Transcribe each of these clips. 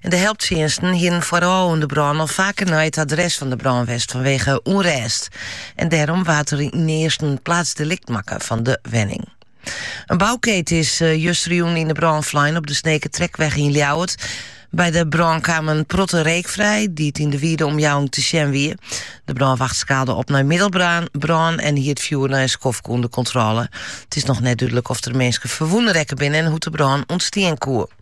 en de helptsjinsten hienen foarôf oan de brân al faker nei it adres fan de brân west fanwege ûnrêst en dêrom waard der ynearst in plaatsdelikt makke fan de wenning. In boukeet is eh, justerjûn yn de brân flein op de Snekertrekweg yn Ljouwert. By de brân kaam in protte reek frij, dy't yn de wiede omjouwing te sjen wie. De brânwacht skaalde op nei middelbrân en hie it fjoer nei in skoftke ûnder kontrôle. It is noch net dúdlik oft der minsken ferwûne rekke binne en hoe't de brân ûntstean koe.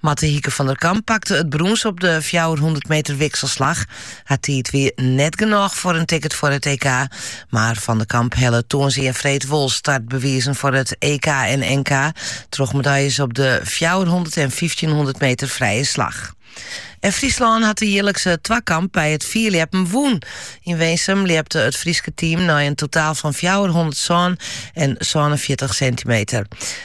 Marte Hieke van der Kamp pakte it brûns op de fjouwerhûndert meter wikselslach. Har tiid wie net genôch foar in ticket foar it EK, mar Van der Kamp helle tongersdei en freed wol startbewizen foar it EK en NK troch medaljes op de fjouwerhûndert en fyftjinhûndert meter frije slach. En Fryslân hat de jierlikse twakamp by it fierljeppen wûn. Yn Winsum ljepte it Fryske team nei in totaal fan fjouwerhûndertsân en sânenfjirtich sintimeter.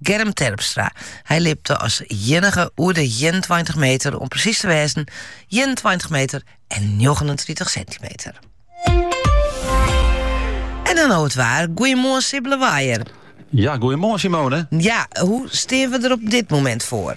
Germ Terpstra. Hy ljepte as iennige oer de 21 meter, om presys te wêzen 21 meter en 39 sintimeter. En dan no it waar. Goeiemoarn Sibbele Waaier. Ja, goeiemoarn Simone. Ja, hoe steane we der op dit momint foar?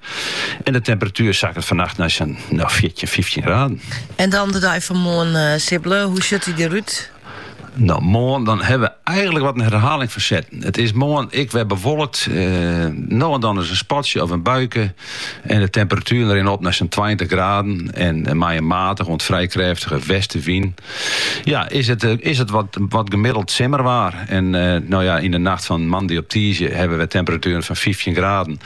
En de temperatuer sakket fannacht nei sa'n no, fjirtjin, fyftjin graden. En dan de dei fan moarn, eh, Sibbele, hoe sjut dy derút? No, moarn dan hawwe we eigenlik wat in herhaling fan setten. It is moarn ek wer bewolkt. Uh, no en dan ris in spatsje of in buike. En de temperatueren rinne op nei sa'n 20 graden. En eh, mei in matige oant frij krêftige westewyn. Ja, is it, eh, is it wat, wat gemiddeld simmerwaar. En no ja, yn de nacht fan moandei op tiisdei hawwe we temperatueren fan 15 graden.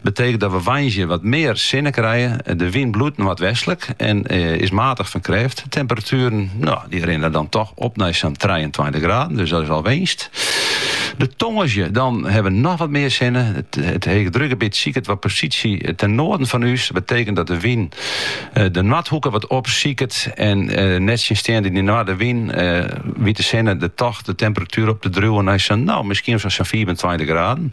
Betekent dat we woansdei wat mear sinne krije. De wyn bliuwt noardwestlik en is matich fan krêft. De temperatueren dy rinne dan toch op nei sa'n trijeentweintich graden, dus dat is al winst. De tongersdei dan ha we noch wat mear sinne. It heechdrukgebiet siket wat posysje ten noarden fan ús. Dat betekent dat de wyn de noardhoeke wat opsiket en nettsjinsteande dy noardewyn wit de sinne dan toch de temperatuer op te driuwen nei sa'n no miskien sa'n fiifentweintich graden.